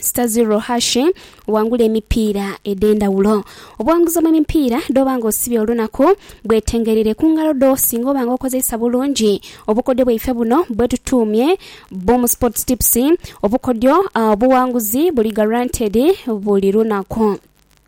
Stazirro Hashi wangula emipiira edh'endhawulo. Obuwanguzi mu mipiira dh'oba nga osibye olunaku bwetengereire ku ngalo dho singa oba nga okozeisa bulungi obukodyo bwaife buno bwe tutuumye Boom Sports Tips. Obukodyo obuwanguzi buli guaranteed buli lunaku.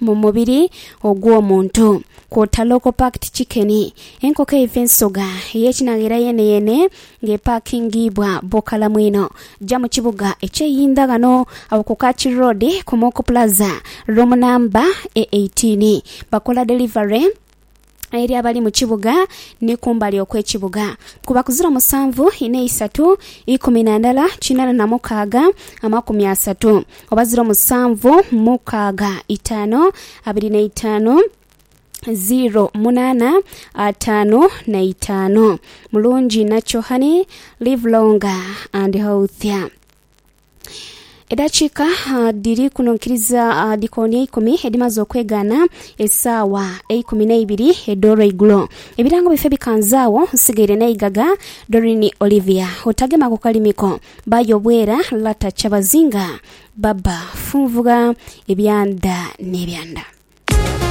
mu mubiri ogw'omuntu. Kwota local packed chicken, enkoko eiva ensoga ey'ekinagheera yeeneyeene nga epaakingiibwa bukalamu inho. Ja mu kibuga eky'e Yindha ghano agho ku Kachi Road ku Mooko Plaza, roomu namba e eighteen. Bakola delivery. eri abali mu kibuga ni kumbali okw'ekibuga, kuba ku ziro musanvu ina isatu ikumi na ndala kinana na mukaaga amakumi asatu, oba ziro musanvu mukaaga itaanu abiri na itaanu, ziro munaana ataanu na itaanu. Mulungi inha kyo honey, live longer and healthier. Edhakiika dhiri kuno nkiriza dhikoni eikumi edhimaze okwegaana esaawa eikumi n'eibiri edh'olweigulo. Ebirango bife bikanze agho nsigaire n'eigaga Doreen Olivia otagema ku kalimi ko baayo obwera Lata Kyabazinga Baba funvugha ebyanda n'ebyanda.